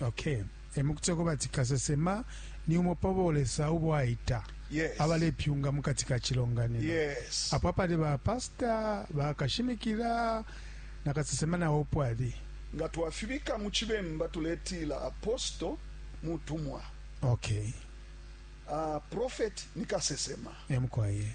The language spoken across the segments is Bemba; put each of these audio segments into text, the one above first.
Okay. E mu kutila kweba ati kasesema ni umo pa bo Lesa ubo aita Yes. abalepyunga mu kati ka cilonganino Yes. apo apali ba pastor bakashimikila na kasesema nawo upo ali Nga twafibika mu Cibemba tuletila aposto mutumwa. okay Ah, prophet ni kasesema. emukwaye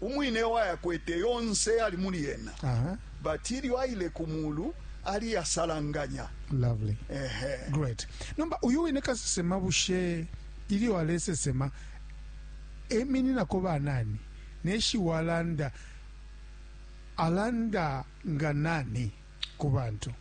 Umwine wayakwete yonse yali muli yena. Aha. But ilyo aile ku mulu ali yasalanganya. Lovely. Ehe. Great. Nomba uyu wine kasesema bushe ilyo alesesema emininako banani neshi walanda alanda nga nani ku bantu?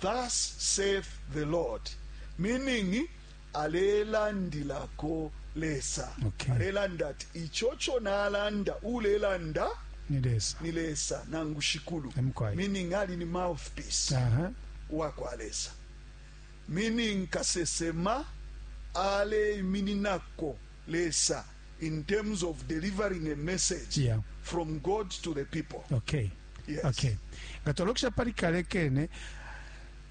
Thus saith the Lord, meaning alelandilako Lesa. Okay. Alelanda ati icho cho nalanda ulelanda ni Lesa. Ni Lesa nangu shikulu. Emkwai. Meaning ali ni mouthpiece. Uh -huh. Wa kwa Lesa. Meaning kasesema ale imininako Lesa in terms of delivering a message yeah. from God to the people. Okay. Yes. Okay. Ngatolokisha pali kale kene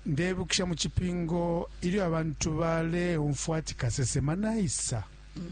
ndebukisha mu kipingo ilyo abantu baleumfwa ati kasesema naisa mm -hmm.